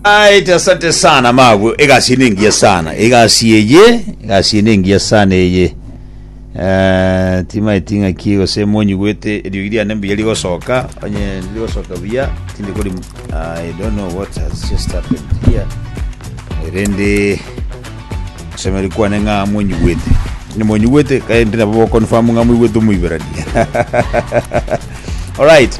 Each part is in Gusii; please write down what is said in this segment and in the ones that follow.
Right, asante sana mabwe egasi ene engiya sana egasi eye egasi ene engiya sana eye Eh, timaeti ng'aki gose monyigwete eriogi riane mbuya rigosoka onye rigosoka buya tindi kori I don't know what has just happened here erende semeri kwane ng'a monyigwete ni monyigwete kaende nabo bokonfamu ng'a moigwete omoiberani alright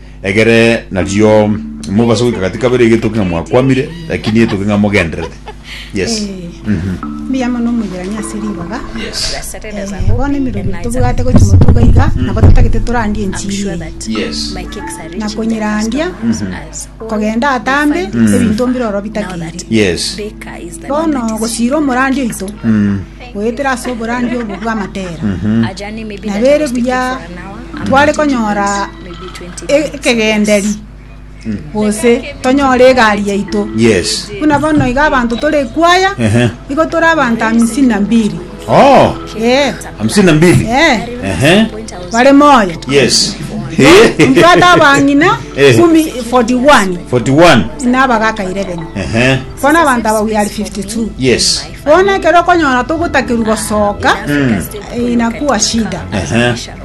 Egere nario mobase goika gati kabere egetoki ng'a mwakwamire, lakini etoke ng'a mogenderete. Yes. Eeh, mbuya mono omoigerania ase ribaga. Yes. Eh, bono emeruru tobwate gochia motuga iga nabo totagete torandie enchiri eye Yes. na konyerandia kogenda atambe ebinto mbire oro bitakeire Yes. bono gochira omorandi oito goetera ase oborandi obo bw'amatera nabere buya tware konyora ekegenderi gose tonyore egari yaito Yes. buna bono iga abanto tore ekwaya Ehe. igo tore abanto hamsini na mbili Oh, Eh, hamsini na mbili. eh, Ehe. bare moyo Yes. mbwate abang'ina Eh. kumi 41 41. nabagaka 11 Ehe. bono abanto aba we are 52 Yes. bono ekero okonyora togotakerwa gosoka inakuwa shida Ehe.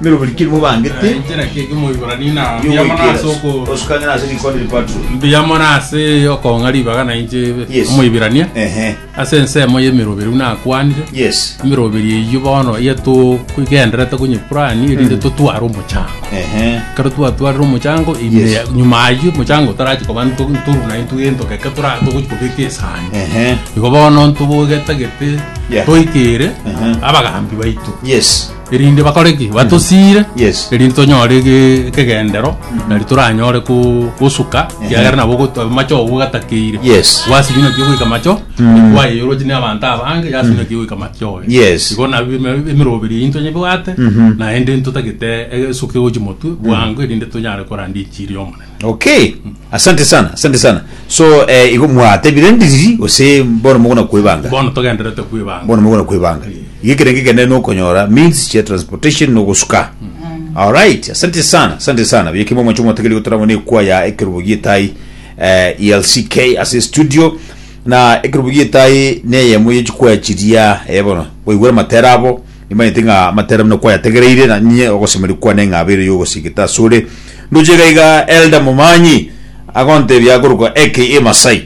Nero buri keri mobangete. Enchera ki ekemo Ibrania na Mbuya mono ase okooro. Osukang'ina ase rikondi ripaturo. Mbuya mono ase okong'a ribaga na inche ebe. Yes. Omoibirania. Ehe. Ase ensemo y'emeroberi buna akwanire. Yes. Emeroberi eyio bono iga togenderete konyepurani erinde mm. totware omochango. Ehe. Kero twatwarire omochango ime yes. nyuma ayio omochango torachi koba ntoru na intu entokeke torachi kobeka esani. Ehe. Igo bono ntobogete gete. Yeah. Toikere. Ehe. Abagambi baitu. Yes. erinde bakore ki batosiire Yes. erinde tonyore ege- ekegendero nari toranyore ko- gosuka kiagera nabo goto- macho ogo gatakeire Yes. gwasinywa naki ogoika macho kwayeyoroti ne abanto abange yasinywa naki ogoika macho oye Yes. igo nabi eme- emeroberi eyio ntonyebwate naende ntotagete egesuka egochi motwe bwango erinde tonyare koranda enchiri y'omonene Okay. Asante sana, asante sana. So eh, igo mwatebire ndiriri gose bono mogona kwebanga. bono togenderete kwibanga Bono mogona kwebanga. Igo ekerenge kende nokonyora means chia transportation no gosuka. All right. Asante sana, asante sana. Biyeke mwa mwacho mwategeri gotoramo ne kwa ya ekerubo gietai eh, ELCK as a studio na ekerubo gietai ne yemo yechikwa chiria eh bono. Boigwera matera abo. Nimanyete ng'a amatera buna kwayategereire, na inye ogosemeria kwane ng'a abeire y'ogosigete asore. Ndoche iga iga Elder Momanyi agontebia akorokwa aka Masai,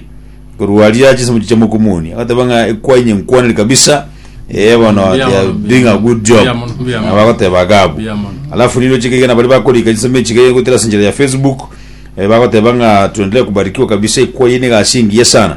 korwa aria chinsemo chichia mokumuni, agoteba ng'a ekwa inye nkwaneri kabisa, eh bono Mbuya they are mono, doing a good job. mbuya mono, mbuya mono. Abagoteba agabu. Mbuya mono. Alafu nigo chika iga nabari bakorika chisemo echiga iga gotera ase enchera ya Facebook, eh, bagoteba ng'a tuendelee kubarikiwa kabisa ekwa eye niga ase engiya sana.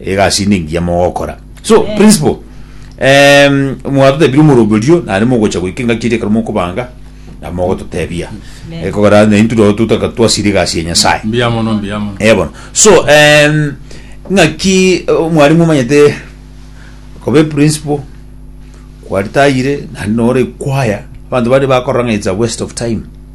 Egasi inde engiya mogokora. So, Eh. principle, em, mwatotebire omorobi orio, naende mogocha goika engaki eria ekero mokobanga, na mogototebia. Amen. Ekogera na intwe nabo totaka twasira egasi ya Nyasae. Mbuya mono, mbuya mono. Eh, bono. So, em, ng'aki eh, mwarimu omanyete koba eprinciple, kwaritayire, naende nore ekwaya, abanto bare bakorora ng'a it's a waste of time.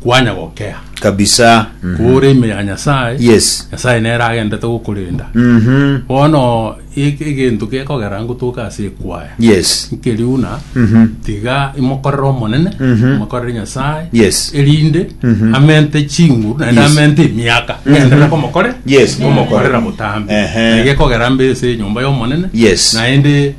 kwanya gokea. kabisa mhm. Kore ime ya Nyasaye. Yes. Nyasaye nere agendete gokorenda. Mhm. Bono e- egento gekogera ngotoka ase ekwaya. Yes. Nkeriuna Mhm. tiga imokorere omonene, Mhm. imokorere Nyasaye. Yes. Erinde Mhm. amente chinguru naende Yes. amente emiaka. Mhm. Enderere komokore. Yes, komokorera. Komokorera botambe. Ehe. Egekogera mbe ase enyomba y'omonene. Yes. Naende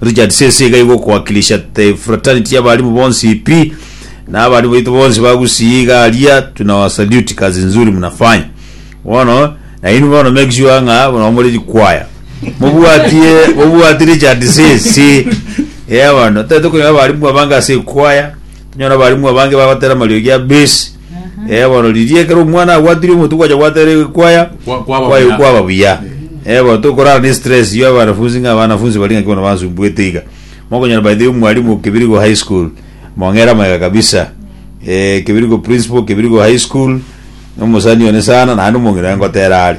Richard sese iga igo okoakilisha the fraternity y'abalimu bonsi pi na abalimu baito bonsi ba Gusii iga aria tunawasalute kazi nzuri mnafanya bono na inwe bono make sure ng'a nabo more rikwaya mobwatie mobwatie Richard sese eh bono tari tokonyora abalimu abange ase ekwaya tonyora abalimu abange bagotera amariogi a base Eh, bono riria ekero omwana abwatire omotu gwacha gwatera kwaya Kwa- kwaba kwayo buya. kwaba buya Eh, bono tokorara ne stress ya abanafunzi ng'a abanafunzi bari ng'aki bono bansumbuete iga mokonyora by the way omwalimu kibirigo high school mong'era amaega kabisa Eh, kibirigo principal kibirigo high school omosani one sana naende omong'ina aye ngotera are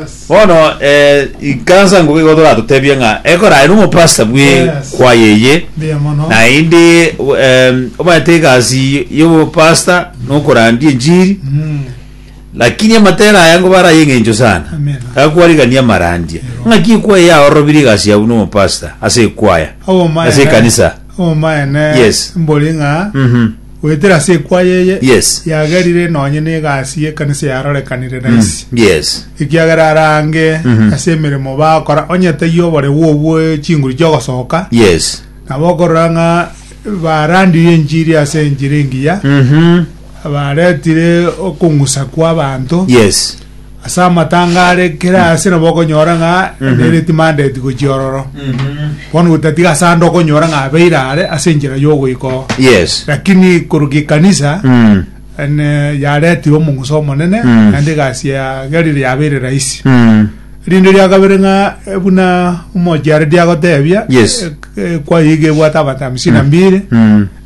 Yes. Bono eh, ikansa nguga igo toratotebie ng'a ekora aye nomopasta bwe Yes. kwaya eye Mbuya mono. naende em, omanyete egasi y'obopasta nokorandia enchiri Mm. lakini amatera aya ngo baraye eng'encho sana Amen. gakwarigania amarandia Ero. ng'aki ekwaya yaororobiri egasi yabu nomopasta ase ekwaya Obomaene- Ase ekanisa. obomaene Yes. mbori ng'a Mhm. Goetera ase ekwaya eye Yes. yagerire nonye n'egasi y'ekanisa yarorekanire na isi. Yes. ekiagera arange ase emeremo bakora onye taiyo oborebu obwo chinguru chiogosoka Yes. nabo okorora ng'a barandirie enchiri ase enchera engiya Mhm. baretire okong'usa kwa abanto Yes. Ase amatanga are kera mm. ase nabo okonyora ng'a mm-hmm. emereti mandeti gochia ororo mm-hmm. bono gotatiga ase ande okonyora ng'a abeire are ase enchera y'ogoika oo yes lakini koruga ekanisa mm. ene yaretirwe omong'usa omonene mm. naende egasi yagerire yabeire rahisi rinde ria kabere ng'a eh, buna omochiare diagotebia yes eh, eh, kwayiga ebwate abatamisina mbire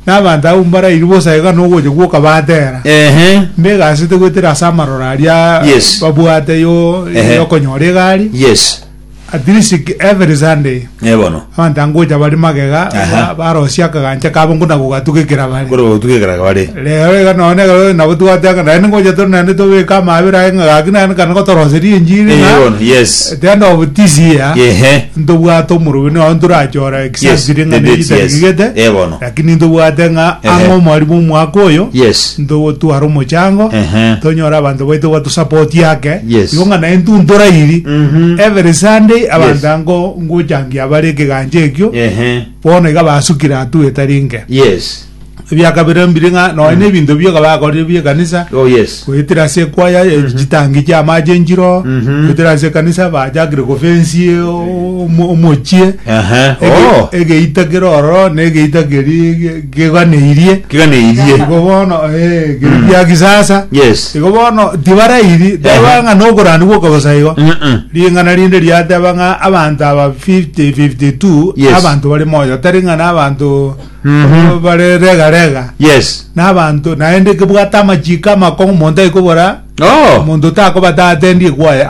na abanto abwo mbarairi bosa iga na ogocha gwoka batera. Ehe. Mbegasete goetera ase amaroro aria Yes. babwate yo Ehe. yokonyora egari. Yes. At least ki- every Sunday Eh, bono. abanto angocha bari magega Aha. ba- barosia akagancha kabo nkuna gogatugekera bare. Kore gotugekeraga bare. Rero iga nonye ekero nabo twateka naende ngocha tore naende tobeke amabera aye ng'a gaki naende kana gotoroseria enchiri Eh, ng'a bono. Yes. at the end of this year Ehe. ntobwate omorobini oye ntorachore Yes, Sasiri ng'a the date, yes. neritagigete, Eh, bono. lakini ntobwate ng'a Ehe. ang'e omwarimu omwaka oyo Yes. ntogotwara omochango Ehe. tonyora abanto baito batusapoti ake Yes. igo ng'a naye ntuntora iri Mhm. every sunday Yes. abanto ango ngochangia bare ekegancha ekio Ehe. bono iga basukire atuete rinke Yes. ebiakabera mbire ng'a nonya na ebinto bioka bakorire bie kanisa Oh yes. goetera ase ekwaya e- chitangi chia amache enchiro Mhm. goetera ase ekanisa bachakire gofensi o- omo- omochie Aha. Ege- Oh. egeita kere ororo na egeita keri ge- keganeirie Kiganeirie. igo bono eh, keri gia kisasa Yes. igo bono tibarairi Ehe. teba ng'a nokorani gwoka bosa igo Mm-mm. ring'ana rinde riateba ng'a abanto aba 50 52 Yes. abanto bari moyo tari ng'a na abanto Abwo bare rega rega Yes. na abanto naende kebwate amachiko amakong'u omonto aikobora Oh. omonto takobata atendie kwaye